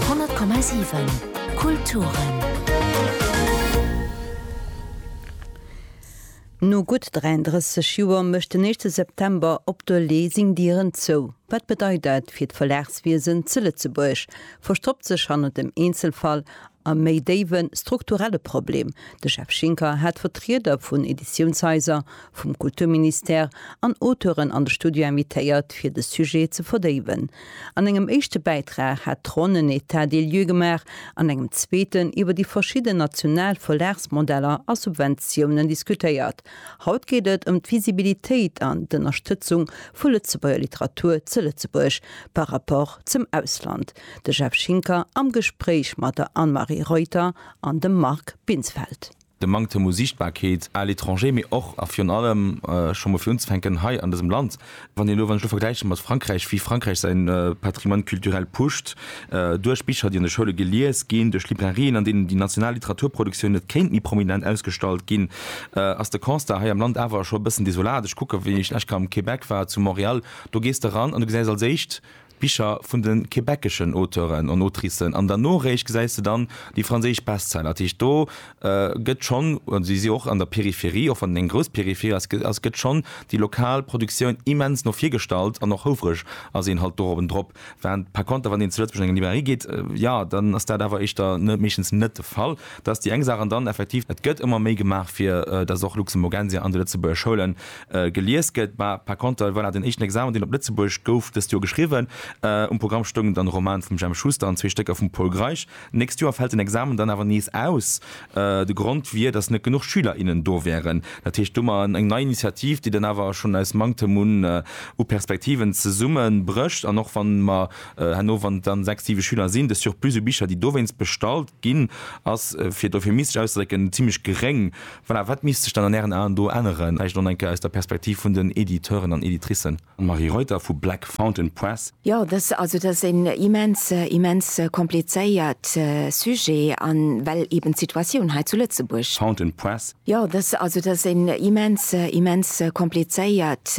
100,7 Kulturen. No gutt 33 Joer mécht den éischte September op de Lay seng Dieren zou. Wat bedeit dat fir d'Verlagswiesen ze Lëtzebuerg? Verstoppt sech hannert dem Eenzelfall e méi déiwe strukturelle Problem? De Jeff Schinker hat Vertrieder vun Editiounshaiser, vum Kulturministère an Auteuren an de Studio invitéiert, fir de Sujet ze verdéiwen. An engem éischte Bäitrag hat d'Ronn en État des lieux gemaach, an engem zweeten iwwer déi verschidden national Verlagsmodeller a Subventiounen diskutéiert. Haut geet et ëm d'Visibilitéit an d'Ënnerstëtzung vu Lëtzebuerger Literatur ze Lëtzebuerg par rapport zum Ausland. De Jeff Schinker am Gespréich mat der Anne-Marie Reuter an dem Marc Binsfeld. de Manktem u Siichtbarkeet à l'étranger, mee och a virun allem, scho mol fir unzefänken, hei an dësem Land. Wann een elo, wann ech elo vergläichen mat Frankräich, wéi Frankräich säin Patrimoine culturel pusht, duerch Bicher, déi an de Schoule gelies ginn, duerch Librairien, an deenen déi national Literaturproduktioun net kéint méi prominent ausgestallt ginn, ass de Constat hei am Land awer scho e bëssen desolat. Ech kucken, wéi ech lech ka am Québec war, zu Montréal, do gees de ran an du gesäis als éischt, Bicher vun de quebeceschen Auteuren an Autricen an der Noréischt gesäis de dann déi franséisch Bestseller. Dat heescht, do gëtt schonn, an si si och an der Peripherie, och wann et eng grouss Peripherie ass, ass, gëtt schonn déi lokal Produktioun immens no vir gestallt an och houfreg ass een halt do oben drop. Wâhrend par contre, wann een zu Lëtzebuerg an eng Librairie geet, jo, dann ass dat awer éischter meeschtens net de Fall. Dat ass déi eng Saach. An dann effektiv, et gëtt ëmmer méi gemaach, fir dass och Luxemburgensia an de lëtzebuerger Schoulen Gelies gëtt, mä par konter, voilà, den éischten Examen, deen op Lëtzebuerg gouf dëst Joer geschriwwen. Um Programm stoungen dann e Roman vum Jemp Schuster an zwee Stécker vum Pol Greisch. D'nächst Joer fält den Examen dann awer nees aus. De Grond wier, datt net genuch Schüler, innen do wären. Dat heescht domat eng nei Initiativ, déi dann awer schonn aus Manktem un u Perspektiven zesumme brécht. An och wann mer herno, wann et dann sechs, siwe Schüler sinn, de Surplus u Bicher, déi dowéinst bestallt ginn, ass, fir et euphemistes auszedrécken, zimmlech geréng. Voilà, wat misst sech dann an Ären Aen do änneren, vläicht och nach eng Kéier aus der Perspektiv vun den Editeuren an Editricen? Marie Reuter vu Black Fountain Press. Jo, dass, also dass en immens, immens komplizéiert Sujet an well eben d'Situatioun hei zu Lëtzebuerg. Fountain Press. Jo, dass, also dass en immens, immens komplizéiert.